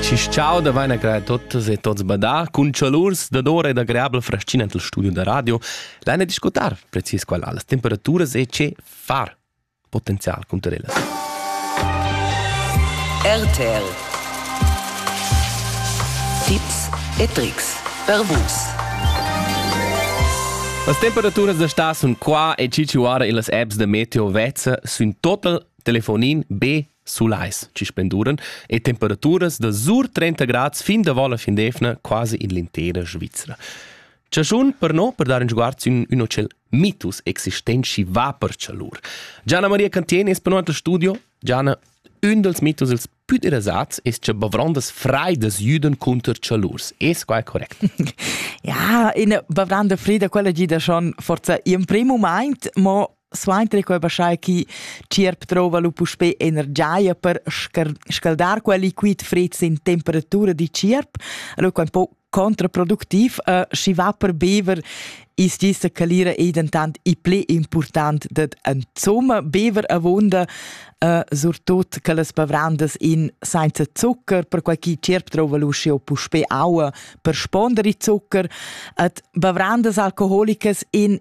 Ci ciao da vaina creà tuttas e tots badar cun chalurs da dora e da greabla fraschina tel studio da radio, laina discutar precis qual las temperaturas e che far potenzial cunter ellas. RTL Tipps e Tricks per vus. Las temperaturas da sta sun qua e ciciuara in las apps da meteo vezza sun total telefonin B sulais chi spenduran e temperaturas da sur 30 grads fin davant la fin d'eivna quasi in l'intera Svizra. Chaschun per no per dar in sguard sün ün hotel mitus existenci va per chalur. Gianna Maria Cantien es per noi al studio. Gianna, ün dals mitus ils pü interessats es cha bavrondas freidas jüdan cunter chalurs. Es quai correct? ja, in bavranda freida quella gida schon forza in primo moment, ma suenter quei baschai chi tschierp drova lu puspé energia per scaldar quel liquid fred sin temperatura di tschierp, allora quei un po contraproduktiv, uh, schi va per bever is gissa calira ei dentant i ple important dat insomma bever avonda uh, surtut che las bavrandas in senza zucker per quai chi tierp trova luci o puspe aua per spondere zucker at bavrandas alcoholicas in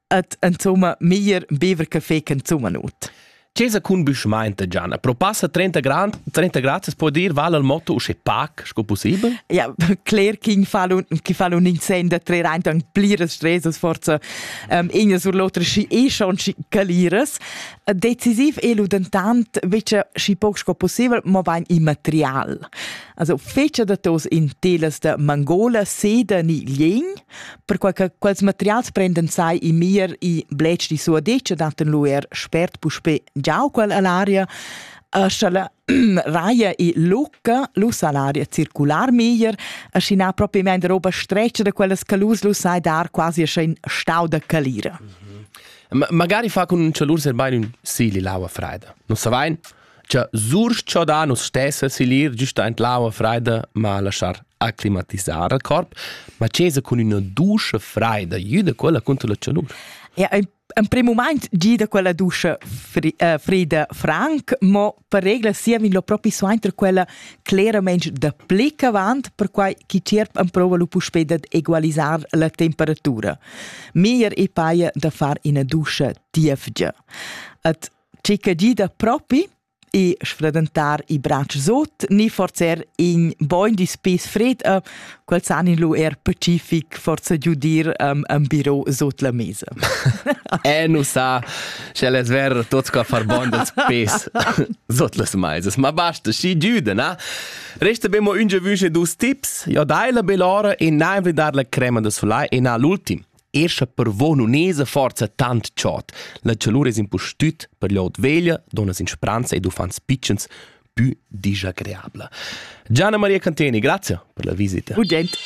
et insomma meglier bever caffè che insomma not. Chesa cun büschmaint Gianna, pro passa 30 grand, 30 gratis può dir vale il motto usce pac sco possibel? Ja, cler ch'in fa un chi fa un insen da tre reint an pliras stresas forza ähm ina sur l'otra schi e schon schi calires. Decisiv è lu dentant vece schi poc sco possibel, ma vain immaterial. Also fece da tos in telas da Mangola, Sede ni Lien Perquai che quels materials prendan sai i mir i blech di sua dice datten lu er spert puspe giau quel all'aria Sch'ella raia i lucca, lu sa l'aria circular meglier, e schi na propriamente roba streccia da quellas calus, lu sai dar quasi ascha in stau da calira. Mhm. Magari fa con un cialur ser bain un sili l'aua freida. Non sa vain? cha surchodar nus stessa silir giusta in l'aua freida ma laschar acclimatisar al corp, ma cesa cun üna duscha freida, jüda quella contro la chalur. Ja, ein en prim moment gida quella duscha fri, uh, frida franc, ma per regla siam lo propi suenter quella clarament da pli avant, perquai chi tierp en prova lu puspei dad egualisar la temperatura. Mier e paia da far ina duscha tiefgia. Et Tgi che gida propi e sfradentar i bratsch sut ni forzer in bogn dis pis fred e quels han in lu er pacific forza giudir um, am biro sut la mesa. e nu sa sche les ver tots co far bon dels pis sut las meisas, ma basta, schi giuda, na? Resta bemo unge vüsche dus tips, ja dai la belora e na invri dar la crema de soleil e na l'ultim. Er sche per vo nun esa forza tant chod, la chalur es impustüt per l'ot veglia, donnas in spranza ed uffants pitschens pü disagreabla. Gianna Maria Canteni, grazie per la visita. Gudent.